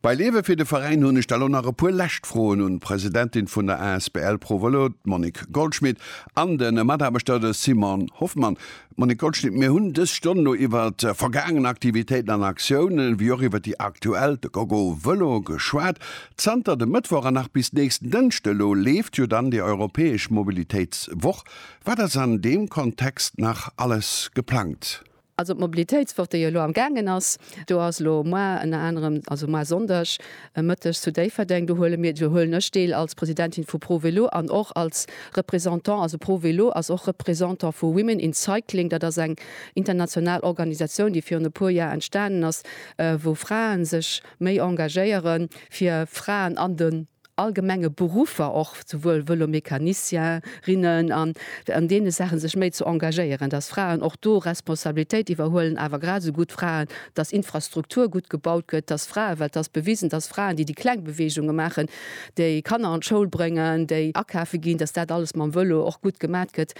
Bei Leewe fir de Veräin hunn ech da lo nach e puer lescht Froen un d'Presidentin vun der asbl Pro Vëlo, d'Monique Goldschmit, an de Mataarbechter, de Simon Hoffmann. Monique Goldschmit, mir hunn dës Stonn lo iwwer vergaangen Aktivitéiten an Aktiounen, ewéi och iwwer déi aktuell, de Gogo Vëlo, geschwat. Zanter dem Mëttwoch an nach bis nächsten Dënschde elo leeft jo dann déi europäesch Mobilitéitswoch. Wat ass an deem Kontext nach alles geplangt? Also d'Mobilitéitswoch, déi elo am gaangen ass, do ass elo moar ënner anerem, also moar Sonndeg Mëtteg zu Déifferdeng, do huele mir, do huelen ech deel als Presidentin vu ProVelo an och als Représentant, also ProVelo ass och Représentant vu Women in Cycling, dat ass eng international Organisatioun, déi virun e puer Joer entstanen ass, wou Frae sech méi engagéieren, fir Fraen an de. allgemenge Beruffer, och souwuel Vëlomecanicien, rinnen, an an deene Saache sech méi ze engagéieren, dass Fraen och do Responsabilitéit iwwerhuelen, awer grad esou gutt Fraen, dass Infrastruktur gutt gebaut gëtt, dass Fraen, well et ass bewisen, dass Fraen, déi déi kleng Beweegunge maachen, déi Kanner an d'Schoul bréngen, déi akafe ginn, dass dat alles mam Vëlo och gutt gemat gëtt.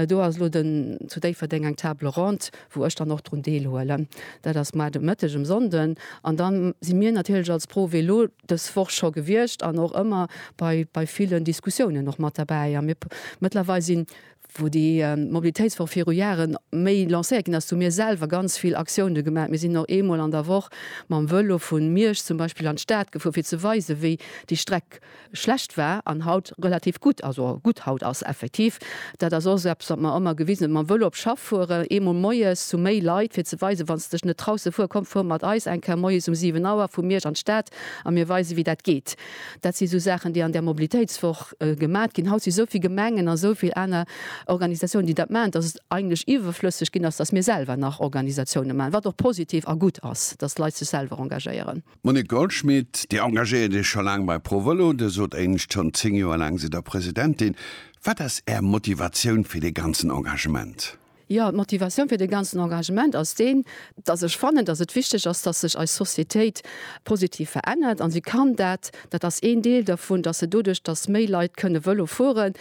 Do ass elo den zu Déifferdeng eng Table ronde, wou ech dann och drun deelhuelen. Dat ass mar de Mëtteg um Sonnden. An da si mir natierlech als Pro Vélo. dës Woch scho gewiescht an och ëmmer bei, bei villen Diskussiounen och mat derbäi. A mir mëttlerweil sinn, wou déi Mobilitéitswoch viru Jahre méi lancéiert ginn ass, hu mir selwer ganz vill Aktiounen gemaach. Mir sinn och eemol an der Woch mam Vëlo vu Miersch zum Beispill an d'Stad gefuer, fir ze weisen, wéi déi Streck schlecht war an haut relativ gutt, also gutt haut ass, effektiv. Dat ass och eppes, wat mer ëmmer gewisen hunn mam Vëlo op Schaff fueren. Eemol moies zu méi Leit, fir ze weisen, Wann s de dech net traus ze fueren, komm, fuer mat eis eng Kéier moies um 7 Auer vu Miersch an d'Stad a mir weisen, wéi dat geet. Dat si sou Saachen, déi an där Mobilitéitswoch gemat ginn. Haut si sou vill Gemengen a sou vill aner Organisatiounen, déi dat maachen, dass et eigentlech iwwerflësseg ginn ass, dass mir selwer nach Organisatiounen maachen, wat och positiv a gutt ass, dass d'Leit sech selwer engagéieren. Monique Goldschmit, Dir engagéiert Iech scho laang bei ProVëlo. Dir sot éinescht, schonn 10 Joer laang sidd Der Presidentin. Wat ass Är Motivatioun fir dee ganzen Engagement? Jo, d'Motivatioun fir dee ganzen Engagement ass deen, datt ech fannen, datt et wichteg ass, datt sech eis Societéit positiv verännert. A si kann dat, dat ass een Deel dervun, datt se doduerch, datt méi Leit kënne Vëlo fueren,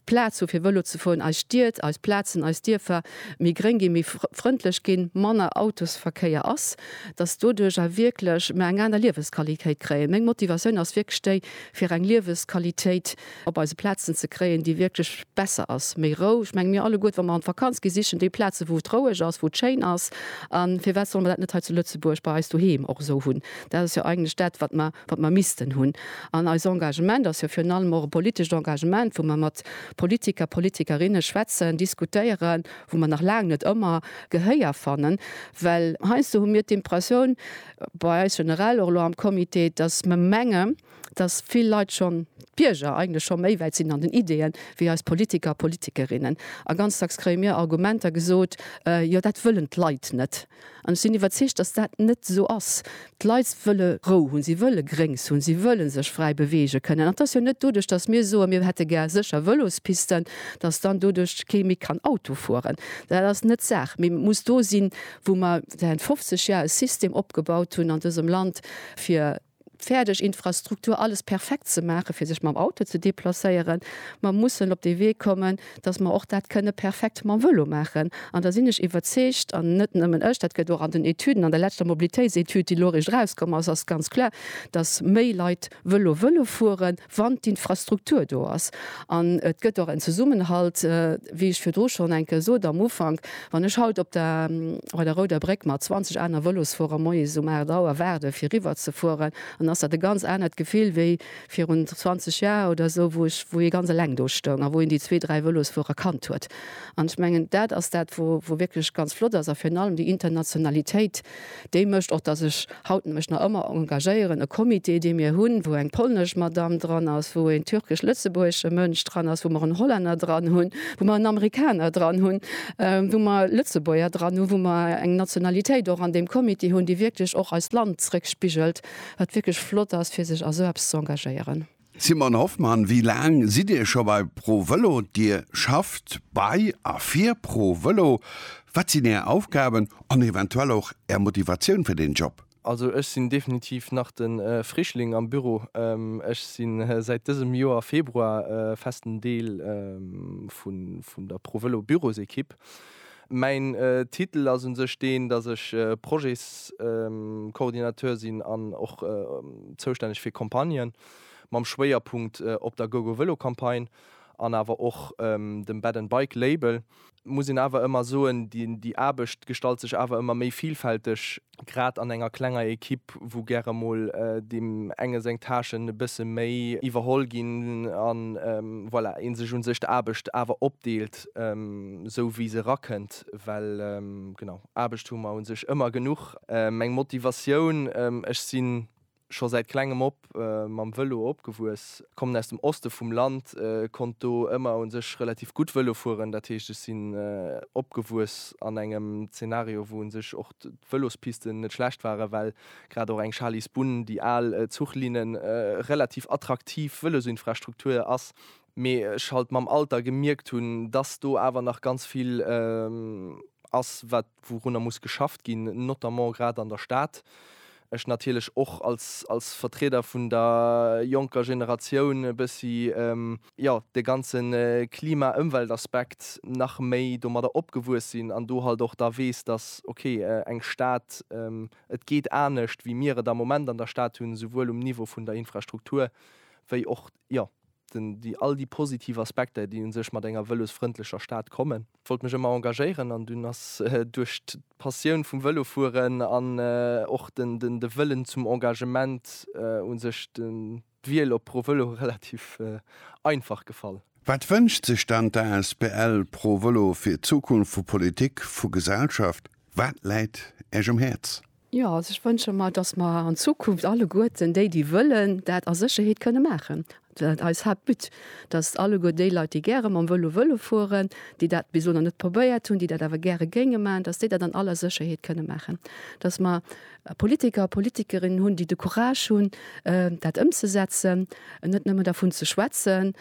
Plaz hu fir Vëlo ze fueren, eis Stied, eis Plazen, eis Dierfer méi gréng ginn, méi frëndlech ginn, manner Autosverkéier ass, datt doduercher wierklech mer eng aner Liewesqualitéit kréien. Meng Motivatioun ass wierklech déi fir eng Liewesqualitéit op eise Plazen ze kréien, déi wierklech besser ass, méi Rou. Ech menge mir alleguerte wa mer an d'Vakanz gi sichen déi Plazen wou et roueg ass, wou et schéin ass. A firwat solle mer dat net hei zu Lëtzebuerg bei eis doheem och esou hunn? Dat ass jo eigentlech dat, wat mer, wat mer missten hunn. An eis Engagement ass jo virun allem och e politescht Engagement, wou mer mat Politiker, Politikerinne schwätzen, diskutéieren, wou mer nach laang net ëmmer Gehéier fannen, well heiansdo hu mir d'Impressioun, bei eis generell, och elo am Comité, dass mer mengen, dass vill Leit schonn, d'Bierger eigentlech scho méi wäit sinn an den Ideeën, wéi eis Politiker, Politikerinnen. A ganz dacks kréie mir Argumenter gesot, Jo, dat wëllen d'Leit net. An ech sinn iwwerzeegt, dass dat net esou ass. D'Leit wëlle Rou hunn, si wëlle Gréngs hunn, si wëlle sech fräi beweege kënnen. An et ass jo net doduerch, dass mir soen, mir hätte gär sécher Vëlospisten, dass dann doduerch kee méi kann Auto fueren. Dat ass net d'Saach. Mee et muss do sinn, wou mer säit 50 Jar e System opgebaut hunn an dësem Land, fir fäerdeg Infrastruktur, alles perfekt ze maachen, fir sech mam Auto ze deplacéieren. Mer mussen op dee Wee kommen, datt mer och dat kënne perfekt mam Vëlo maachen. An da sinn ech iwwerzeegt, an net nëmmen ech, dat gëtt och an den Etüden, an der leschter Mobilitéitsetüd, déi elo eréischt erauskomm ass, ass ganz kloer, datt méi Leit Vëlo wëlle fueren. wann d'Infrastruktur do ass. An et gëtt och en Zesummenhalt, wéi ech virdru schonn eng Kéier sot am Ufank, wann ech haut op der bei der Rouder Bréck mat 20 aner Vëlosfuerer moies um 8 Auer waarde fir eriwwerzefueren, dann ass dat e ganz anert Gefill wéi virun 20 Jar oder esou, wou ech wou ee ganz eleng do stoung a wou een déi zwee, dräi Vëlosfuerer kannt huet. An ech mengen, dat ass dat, wou wou wierklech ganz flott ass a virun allem déi Internationalitéit, Déi mécht och, datt ech haut mech nach ëmmer engagéieren. E Comité, dee mir hunn, wou eng polnesch Madamm dran ass, wou een türkesch-lëtzebuergesche Mënsch dran ass, wou mer en Hollänner dran hunn, wou mer en Amerikaner dran hunn, wou mer Lëtzebuerger dran hunn, wou mer eng Nationalitéit och an deem Comité hunn, déi wierklech och eist Land zréckspigelt, wat wierklech flott ass, fir sech a sou eppes ze engagéieren. Simon Hoffmann, Wéi laang sidd Dir scho bei ProVelo? Dir schafft bei a fir ProVelo. Wat sinn Är Aufgaben an eventuell och Är Motivatioun fir deen Job? Also ech sinn definitiv nach de Frischling am Büro. Ech si säit dësem Joer Februar festen Deel vun der ProVelo Bürosekipp. Mäin Titel ass un sech deen, datt ech Projets-Coordinateur sinn an och zoustänneg fir Campagnen, mam Schwéierpunkt op der GoGoVelo-Campagne an awer och dem Bed and Bike Label. Muss een awer ëmmer soen, déi Aarbecht gestalt sech awer ëmmer méi vilfälteg. grad an enger klenger Equipe, wou gäre mol deem enge seng Tâchen e bësse méi iwwerholl ginn an voilà, ee sech u sech d'Aarbecht awer opdeelt, sou wéi se erakënnt, well genau, Aarbecht hu mer u sech ëmmer genuch. Meng Motivatioun, Ech sinn Scho säit klengem op mam Vëlo opgewuess, kommen aus dem Oste vum Land, konnt do ëmmer u sech relativ gutt Vëlo fueren. Dat heescht ech sinn opgewuess an engem Zenario wou u sech och d'Vëlospisten net schlecht waren, well grad och eng Charly's Bunn, déi al Zuchlinne, relativ attraktiv Vëlosinfrastruktur ass. Mee ech halt mam Alter gemierkt hunn, dass do awer nach ganz vill ass wat wourunner muss geschafft ginn, notamment grad an der Stad, ech natierlech och als als Vertrieder vun der jonker Generatioun e bëssi jo de ganze Klima-Ëmweltaspekt nach méi domadder opgewuess sinn an do halt och da weess, datt okay eng Stad, et geet anescht wéi mir et am Moment an der Stad hunn, souwuel um Niveau vun der Infrastruktur wéi och jo déi all déi positiv Aspekter, déi u sech mat enger vëlosfrëndlecher Stad kommen. Wollt mech ëmmer engagéieren an dunn ass duerch d'Passioun vum Vëlofueren an och de Wëllen zum Engagement u sech d'Wiel op ProVëlo relativ einfach gefall. Wat wënscht sech dann d'asbl ProVëlo fir d'Zukunft vu Politik, vu Gesellschaft? Wat läit Iech um Häerz? Jo, also ech wënsche mer, dass mer an Zukunft alleguerten déi, déi wëllen, dat a Sécherheet kënne maachen. Dat eis Haaptbut, dass alleguer déi Leit, déi gäre mam Vëlo wëlle fueren, déi dat bis elo nach net probéiert hunn, déi dat awer gäre géinge maachen, dass déi dat an aller Sécherheet kënne maachen. Dass mer Politiker a Politikerinnen hunn, déi de Courage hunn, dat ëmzesetzen, net nëmme dervun ze schwätzen,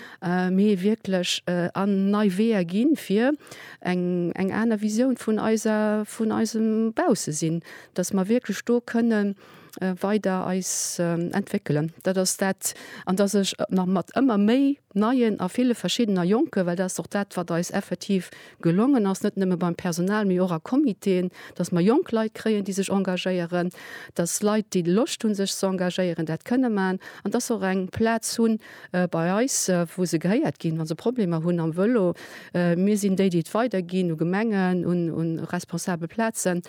mee wierklech an nei Weeër ginn, fir eng eng aner Visioun vun eiser vun eisem Baussesinn, datt mer wierklech do kënne weider eis entwéckelen. Dat ass dat, an datt ech nach mat ëmmer méi neien a ville verschiddener Jonken, well dat ass och dat wat eis effektiv gelongen ass, net nëmme beim Personal, mee och a Comitéen, datt mer jonk Leit kréien, déi sech engagéieren, datt Leit, déi Loscht hunn sech ze engagéieren, dat kënne maachen an datt se och eng Plaz hunn, bei eis wou se gehéiert ginn, wa se Problemer hunn am Vëlo. Mir sinn déi, déi et weiderginn u Gemengen, u responsabel Plazen,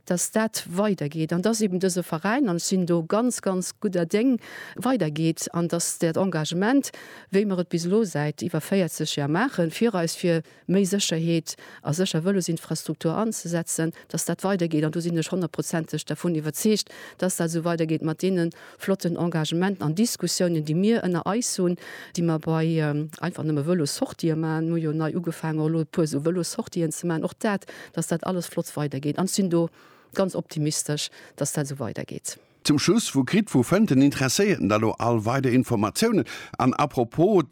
datt dat weidergeet an datt eben dëse Veräin, an ech sinn do ganz, ganz gudder Déng, weidergeet an datt dat Engagement, wéi mer et bis elo säit iwwer 40 Jar maachen, fir eis, fir méi Sécherheet a sécher Vëlosinfrastruktur anzesetzen, dass dat weidergeet. An do sinn ech honnertprozenteg dervun iwwerzeegt, dass dat esou weidergeet mat deene flotten Engagementen an Diskussiounen, déi mir ënner eis hunn, déi mer bei einfach nëmme Vëlossortië maachen. Mir hu jo nei ugefaangen, och elo e puer esou Vëlossortien ze maachen. Och dat, dass dat alles flott weidergeet. An ech sinn do ganz optimistesch, dass dat esou weidergeet. Zum Schluss, Wou kritt, wou fënnt den Interesséierten da lo all weider Informatiounen? An apropos,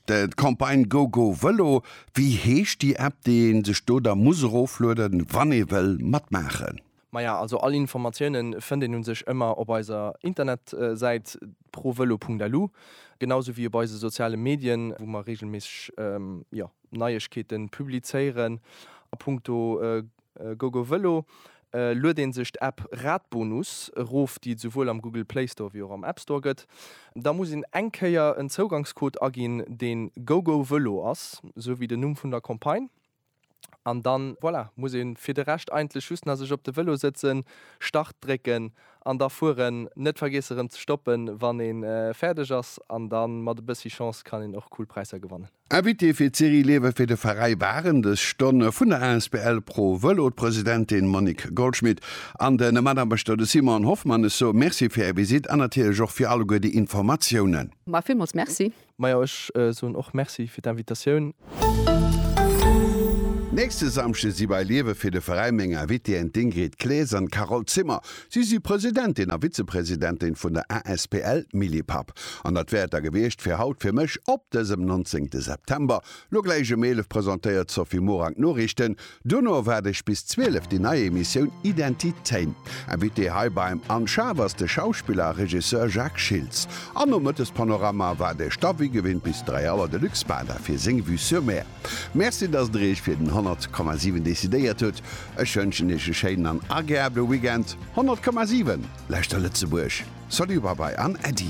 D'Campagne GoGo Vëlo, wéi heescht déi App déi ee sech do da muss eroflueden, wann ee wëll matmaachen? Maja also all Informatioune fënnt een u sech ëmmer op eiser Internetsäit provelo.lu, genau sou wéi op eise soziale Medien, wou mer reegelméisseg Neiegkeete publizéieren a Punkto GoGoVelo, lued een sech d'App Radbonus erof, déi et souwuel am Google Play Store wéi och am App Store gëtt. Da muss een eng Kéier en Zougangscode aginn, dee GoGoVelo ass, sou wéi den Numm vun der Campagne. An dann, voilà, muss ee fir de Rescht eigentlech just nach sech op de Velo sëtzen, Start drécken an da fueren. Net vergiesse erëm ze stoppen, wann ee fäerdeg ass. An da mat e bëssi Chance kann een och cool Präisser gewannen. Invitée fir d'Serie Liewe fir de Veräi waren dës Stonn vun der asbl Pro Vëlo d'Presidentin Monique Goldschmit an de Mataarbechter de Simon Hoffmann. Ech soe Merci fir Är Visitt an natierlech och fir alleguer déi Informatiounen. Mä villmools Merci. Majo, ech soen och Merci fir d'Invitatioun. Nächste Samschde si bei Liewe fir de Veräi meng Invitéeën d'Ingrid Claes an d'Carole Zimmer. Si si Presidentin a Vizepresidentin vun der asbl Millipap. An dat wär et da gewiescht fir haut fir mech op dësem 19 de September. Lo gläich ëm 11 presentéiert d'Sophie Morang d'Noriichten. Duerno erwaart iech bis 12 déi nei Emissioun Identitéin. Invité hei beim Anne Schaaf ass de Schauspiller a Regisseur Jacques Schiltz. An nom Mëttespanorama waart iech da wéi gewinnt bis 3 Auer de Luc Spada fir seng Vue sur Mer. Merci dass der iech fir den 100,7 decidéiert hutt. Ech wënschen iech e schéinen an ageable Weekend. 100,7 Lauschter Lëtzebuerg! Salut Babai an Äddi!